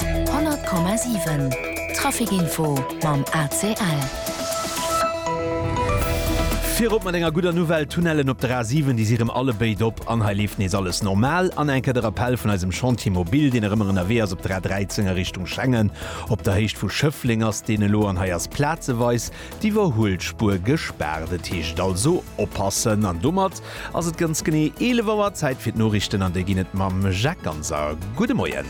100,7 Trafic Info mam ACL. Virop mat enger gudder Nouvelle, D'Tunnellen op der A 7, déi si rëm alle béid op an hei leeft nees alles normal. An enker de Rappell vun eisem Chantier Mobil, deen erëm ënnerwee ass op der A 13 a Richtung Schengen. Op der Héicht vu Schëffleng ass deen elo an hei ass plazeweis D'Iwwerhuelspuer gespaart. Et heescht also oppassen. An domat ass et ganz genee 11 Auer. Zäit fir d'Noriichten an déi ginn et mam Jacques Ganser. Gudde Moien.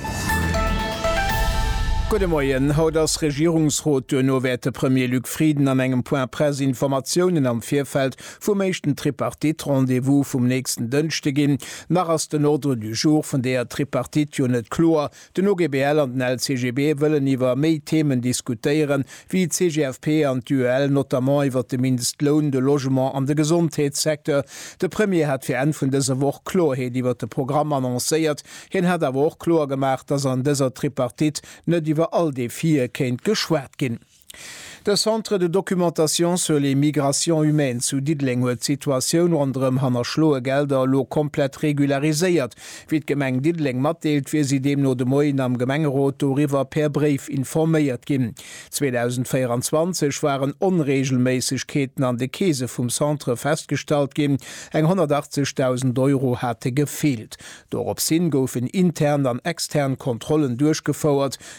Gudde Moien. Haut ass Regierungsrot. Duerno wäert de Premier Luc Frieden an engem Point Presse Informatiounen am Virfeld vum éischten Tripartite-Rendez-vous vum nächsten Dënschde ginn. Nach ass den Ordre du jour vun deeër Tripartite jo net kloer. Den OGBL an den LCGB wëllen iwwer méi Themen diskutéieren, wéi d'CGFP an d'UEL, notamment iwwer de Mindestloun, de Logement an de Gesondheetssecteur. De Premier hat fir Enn vun dëser Woch Klorheet iwwer de Programm annoncéiert. Hien hat awer och kloer gemaach, datt an dëser Tripartite net iwwer all Defie kéint geschwat ginn. De Centre de documentation sur les migrations humaines zu Diddeleng huet d'Situatioun ronderëm hannerschloe Gelder elo komplett regulariséiert. Wéi d'Gemeng Diddeleng matdeelt, wier si deemno de Moien am Gemengerot doriwwer per Bréif informéiert ginn. 2024 waren Onreegelméissegkeeten an de Keese vum Centre festgestallt ginn, eng 180.000 Euro hate gefeelt. Dorops hin goufen intern an extern Kontrollen duerchgefouert.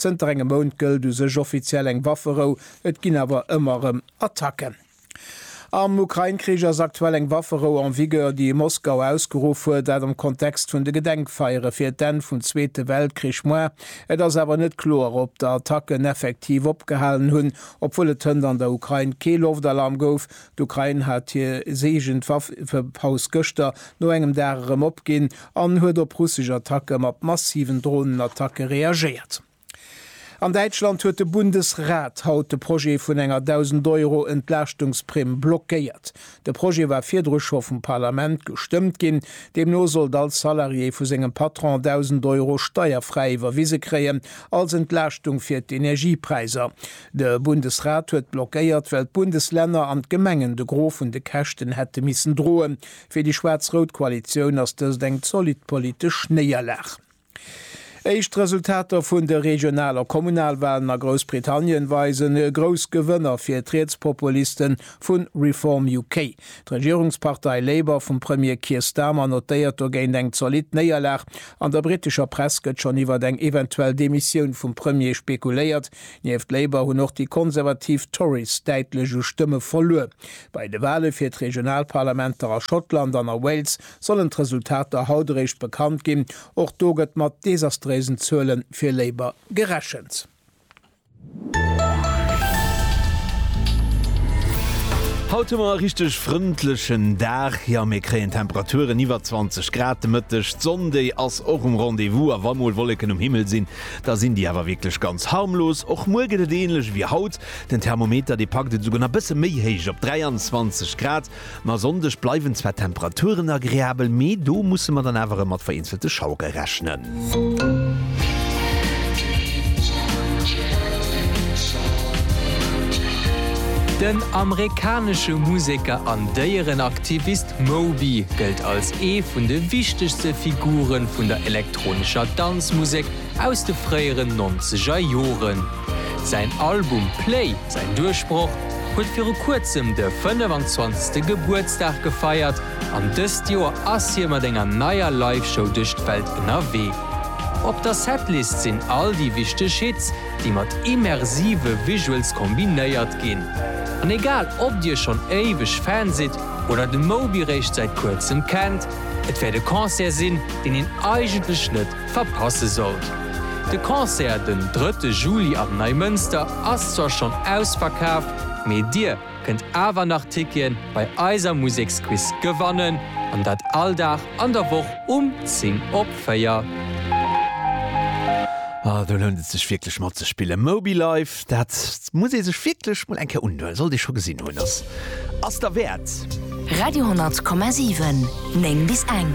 Zënter engem Mount gëllt u sech offiziell eng Wafferou, et ginn awer ëmmer erëm Attacken. Am Ukrain-Krich ass aktuell eng Wafferou en vigueur, déi Moskau ausgeruff huet, dat am Kontext vun de Gedenkfeiere fir d'Enn vum Zweete Weltkrich. Moi, et ass awer net kloer, ob d'Attacken effektiv opgehalen hunn, obwuel et hënt an der Ukrain kee Loftalarm gouf, D'Ukrain hat hir Seegend Waffepaus gëschter no engem Dag erëm opginn an huet op russesch Attacke mat massiven Dronenattacke reagéiert. An Däitschland huet de Bundesrat haut de Projet vun enger 1.000 Euro Entlaaschtungsprimm blockéiert. De Projet war virdru scho vum Parlament gestëmmt ginn. Deemno sollt all Salarié vu sengem Patron 1.000 Euro steierfräi iwwerwise kréien als Entlaaschtung fir d'Energiepräiser. De Bundesrat huet blockéiert, well d'Bundeslänner an d'Gemengen de Gros vun de Käschten hätte missen droen. Fir déi schwaarz-rout Koalitioun ass dëst eng zolidd politesch Néierlag. Éischt Resultater vun de Regional a Kommunalwahlen a Groussbritannien weisen e grouss Gewënner fir d'Rietspopulisten vu Reform UK. D'Regierungspartei Labour vum Premier Keir Starmer notéiert dogéint eng zolidd Néierlag. An der britescher Press gëtt schonn iwwert eng eventuell Demissioun vum Premier spekuléiert. Nieft Labour hunn och déi konservativ Tories däitlech u Stëmme verluer. Bei de Wale fir d'Regionalparlamenter a Schottland an a Wales sollen d'Resultater haut eréischt bekannt ginn. Och do gëtt mat desastréisen Zuele fir Labour gerechent. Haut hu mer e richteg frëndlechen Dag. Jo, mir kréien Temperaturen iwwer 20 Grad de Mëtteg. D'Sonn, déi ass och um Rendez-vous a wa mol Wolleken um Himmel sinn, Da sinn déi awer wierklech ganz harmlos. Och muer gëtt et änlech ewéi haut. Den Thermometer, dee packt et esouguer nach e bësse méi héich op 23 Grad. Ma e Sonndeg bleiwen zwar d'Temperaturen agreabel, mee do musse mer dann awer erëm mat vereenzelte Schauere rechnen. Den amerikanesche Museker an Déierenaktivist Moby gëllt als ee vun de wichtegste Figure vun der Elektronmusek. elektronescher Danzmusek aus de fréieren nonzeger Joren. Säin Album Play, säin Duerchbroch, huet viru kuerzem de 25. Gebuertsdag gefeiert an dëst Joer ass hie mat enger neier Live-Show duerch d'Welt ënnerwee. Op der Setlist sinn all déi wichteg Hits, déi mat immersive Visuals kombinéiert ginn. An egal ob dir schonn éiweg Fan sidd oder de Moby réischt säit kuerzem kennt, Et wäert e Concert sinn, deen een eigentlech net verpasse sollt. De Concert den drëtte Juli am Neimënster ass zwar schonn ausverkaaft, mee dir kënnt awer nach Ticketen bei eiser Museksquiz gewannen, an dat all Dag an der Woch um 10 op 4. Ah do lount et sech wierklech matzespillen. Moby Life. Dat muss ee sech wierklech mol eng Kéier undoen, sollt ee scho gesinn hunn, ass ass derwäert. Radio 10,7, 9 bis eng.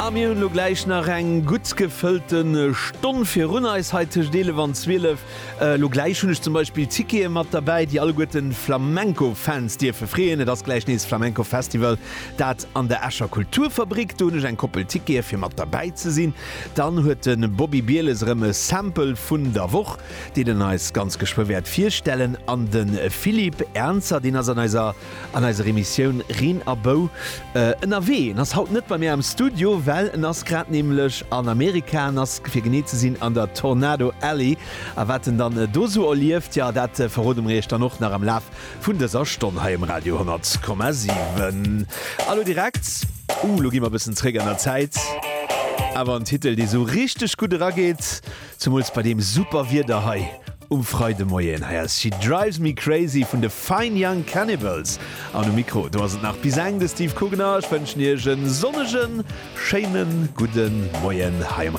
A mir hunn elo gläich nach eng gutt gefëllte Stonn virun eis, hei tëscht 11 an 12. Elo gläich hunn ech zum Beispill Tickete mat derbäi, déi alleguerten d'Flamenco-Fans dierfe freeën. Et ass gläich nees Flamenco-Festival, dat an der Escher Kulturfabrik. Do hunn ech eng Koppel Tickete fir mat derbäi ze sinn. Dann huet de Bobby Bieles erëm e Sample vun der Woch, deen en eis ganz geschwë wäert virstellen. An de Philippe Ernzer, deen ass an eiser an eiser Emissioun Reen a Bou ënnerwee. En ass haut net bei mir am Studio, well en ass grad nämlech an Amerika. En ass fir genee ze sinn an der Tornado Alley. A wat en dann do esou erlieft, jo, dat verrode mer iech dann och nach am Laf Vun dëser Stonn hei um Radio 100,7. A lo direkt, uh, lo gi mer e bëssen zréck an der Zäit, awer en Titel, dee sou richteg gutt erageet, zumools bei deem super Wieder hei um Freidemoien. Hei ass She Drives Me Crazy vun de Fine Young Cannibals an um Mikro, do ass et nach bis eng de Steve Kugner. Ech wënschen Iech e sonnegen, schéine gudde Moien hei um.